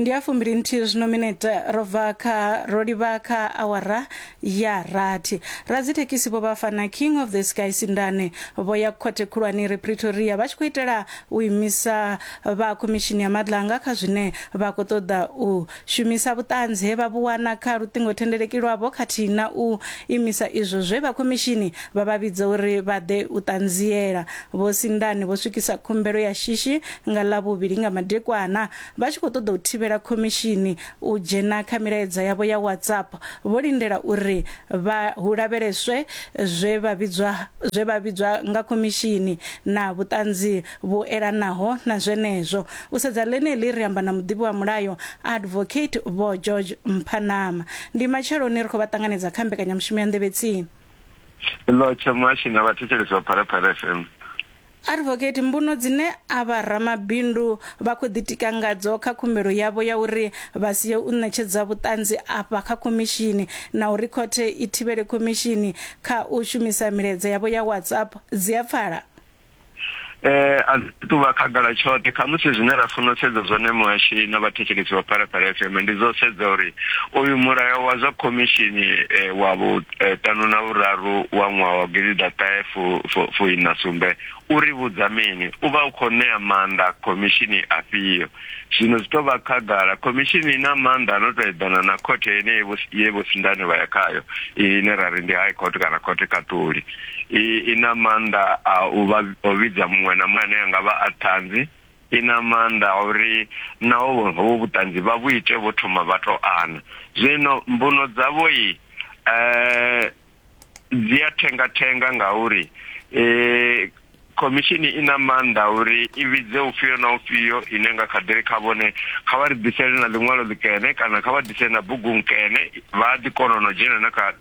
ndi a fumbili nthihi zwino minete ro bva kha ro livha kha awara ya rathi radzithekhisi vho vhafana king of the sky sindane vho ya khothe khulwane ri pretoria vha tshi khou itela u imisa vha khomishini ya madlanga kha zwine vha khou ṱoḓa u shumisa vhuṱanzi he vha vhuwana kha luṱingothendeleki lwavho khathihi na u imisa izwo zwe vha khomishini vha vha vhidza uri vha ḓe u ṱanziela vho sindane vho swikisa khumbelo ya shishi nga Ḽavhuvhili nga madekwana vha tshi khou ṱoḓa u thivhela khomishini u dzhena kha milaedza yavho ya WhatsApp vho lindela uri vha hu lavheleswe zwe vha vhidzwa zwe vha vhidzwa nga khomishini na vhuṱanzi vhu elanaho na zwenezwo. U sedza ḽeneḽi ri amba na muḓivhi wa mulayo Advocate Vho George Mphanama. Ndi matsheloni ri khou vha ṱanganedza kha mbekanyamushumo ya Nḓevhetsini. Ḽotshe Muhashi nga vhathetshelesi vha Phalaphala FM. Advocate, Mbuno dzine avha ramabindu vha khou ḓitika ngadzo kha khumbelo yavho ya uri vha sie u ṋetshedza vhuṱanzi afha kha khomishini na uri khothe i thivhele khomishini kha u shumisa milaedza yavho ya WhatsApp dzi a pfala? Eh, a dzi tu vha khagala tshoṱhe. Khamusi zwine ra funa u sedza zwone muhashini na vhathetshelesi vha Phalaphala FM ndi zwa u sedza uri uyu mulayo wa zwa khomishini eh, wa vhu. eh, ṱanu na vhuraru wa ṅwaha wa gidiḓaṱahe fuiṋa sumbe u ri vhudza mini u vha u khou ṋea maanḓa khomishini afhio zwino zwi tou vha khagala khomishini i na maanḓa no tou eḓana na khothe ine ye vho sindane vha ya khayo ine ra ri ndi high court kana khothe khaṱuli i na maanḓa a u vha o vhidza muṅwe na muṅwe ane a nga vha a ṱhanzi I na maanḓa a uri naho hovhu vhuṱanzi vha vhu ite vho thoma vha tou ana. Zwino mbuno dzavho i dzi a thenga-thenga ngauri khomishini i na maanḓa a uri i vhidze ufhio na ufhio ine nga kha ḓi ri kha vhone kha vha ri ḓisele na ḽiṅwalo ḽikene kana kha vha ḓise na bugu nkene vha a ḓi kona na u dzhena na kha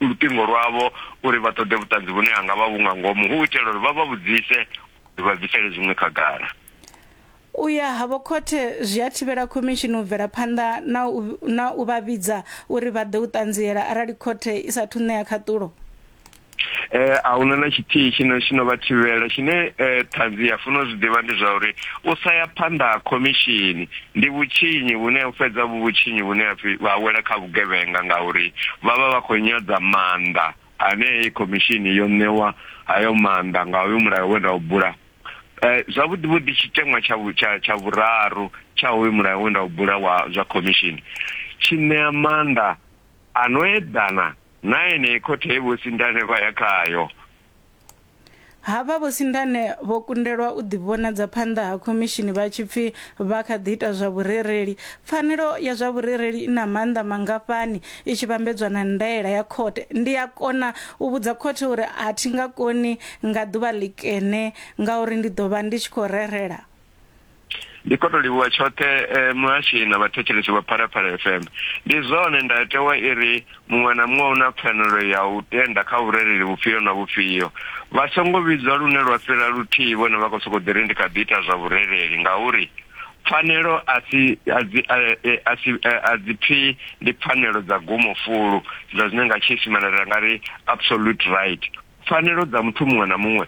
luṱingo lwavho uri vha ṱoḓe vhuṱanzi vhune ha nga vha vhu nga ngomu hu u itela uri vha vha vhudzise uri vha bvisele zwiṅwe khagala. U ya havho khothe zwi a thivhela khomishini u bvela phanḓa na u vha vhidza uri vha ḓe u ṱanziela arali khothe i sa thu ṋea khaṱulo. eh a huna na tshithihi tshine tshi no vha thivhela tshine eh ṱhanzi ya funa u zwi ḓivha ndi zwa uri u sa ya phanḓa ha khomishini Ndi vhutshinyi vhune ho fhedza vhu vhutshinyi vhune ha pfi vha wela kha vhugevhenga ngauri vha vha vha khou nyadza maanḓa ane heyi khomishini yo ṋewa hayo maanḓa nga hoyu mulayo we nda u bula. Zwavhuḓi vhuḓi tshiteṅwa tsha tsha tsha vhuraru tsha hoyu mulayo we nda u bula wa zwa khomishini tshi ṋea maanḓa a no eḓana na enei khothe ye Vho Sindane vha ya khayo. Havha Vho Sindane vho kundelwa u ḓivhonadza phanḓa ha khomishini vha tshi pfi vha kha ḓi ita zwa vhurereli. Pfanelo ya zwa vhurereli i na maanḓa mangafhani i tshi vhambedzwa na ndaela ya khothe? Ndi a kona u vhudza khothe uri a thi nga koni nga ḓuvha ḽikene ngauri ndi ḓo vha ndi tshi khou rerela? ndi khou tou livhuwa tshoṱhe eh, muhashi na vhathetshelesi vha phalaphala fm ndi zwone ndayotewa i ri muṅwe na muṅwe u na pfanelo ya u tenda kha vhurereli vhufhio na vhufhio vha songo vhidzwa lune lwa fhira luthihi vhone vha khou sokou ḓi ri ndi kha ḓi ita zwa vhurereli ngauri pfanelo a si a dzi eh, eh, a si eh, a dzi pfi ndi pfanelo dza gumo fulu dza zwine nga tshiisimane ra nga ri absolute right pfanelo dza muthu muṅwe na muṅwe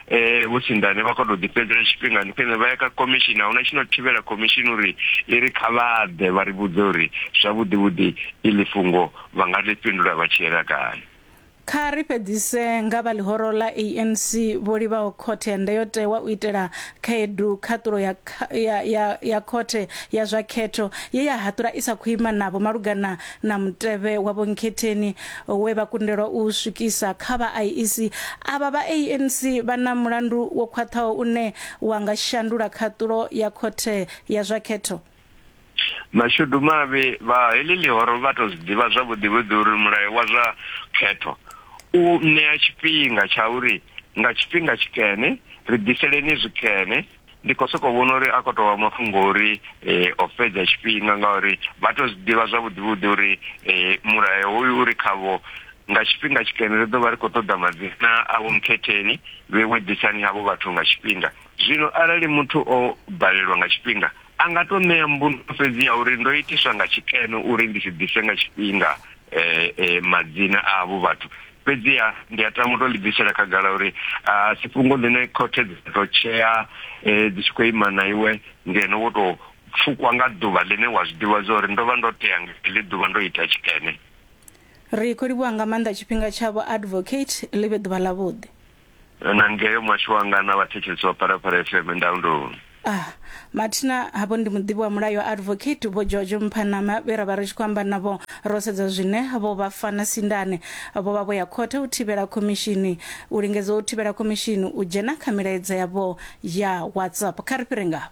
eh vho tsindane vha kho to ḓifhedzela tshifhingani khwine vha ya kha commission a huna tshino thivhela commission uri i ri kha vha ḓe vha ri vhudze uri zwavhuḓi vhuḓi iḽi fhungo vha nga ḽi fhindula vha tshi yela kale Kha ri fhedzise nga vha ḽihoro ḽa ANC vho livhaho khothe ya ndayotewa u itela khaedu khaṱulo ya, ya, ya, ya khothe ya zwa khetho ye ya haṱula i sa khou ima navho malugana na mutevhe wa vhonkhetheni we vha kundelwa u swikisa kha vha IEC. Avha vha ANC vha na mulandu wo khwaṱhaho une wa nga shandula khaṱulo ya khothe ya zwa khetho. Mashudu mavhi, vha heḽi ḽihoro vha tou zwi ḓivha zwavhuḓivhuḓi uri mulayo wa zwa khetho u ṋea tshifhinga tsha uri nga tshifhinga tshikene ri ḓiseleni zwikene. ndi khou sokou vhona uri a khou tou vha mafhungo uri eh, o fhedza tshifhinga ngauri vha tou zwi ḓivha zwavhuḓivhuḓi uri eh, mulayo hoyu uri khavho nga tshifhinga tshikene ri ḓo vha ri khou ṱoḓa madzina avho mukhetheni vhe ṅwedzisani havho vhathu nga tshifhinga zwino arali muthu o balelwa nga tshifhinga a nga tou ṋea mbuno fhedzi ya uri ndo itiswa nga tshikene uri ndi si ḓise nga tshifhinga um madzina avho vhathu Fhedziha ndi a tama u tou ḽi bvisela khagala uri a si fhungo ḽine khothe dza tou tshea dzi tshi khou ima na iwe ngeno wo tou pfukwa nga ḓuvha ḽine wa zwi ḓivha zwa uri ndo vha ndo tea nga heḽi ḓuvha ndo ita tshikene. Ri khou livhuwa nga maanḓa tshifhinga tshavho Advocate, ḽi vhe ḓuvha ḽavhuḓi. Na ngeo muhasho wanga na vhathetshelesi vha Phalaphala FM ndaulo. A, Mathina, Havho ndi muḓivhi wa mulayo Advocate Vho George Mphanama vhe ra vha ri tshi khou amba navho ro sedza zwine vho vha fana sindane. Vho vha vho ya khothe u thivhela khomishini u lingedza u thivhela khomishini u dzhena kha milaedza yavho ya WhatsApp. Kha ri fhire ngafho.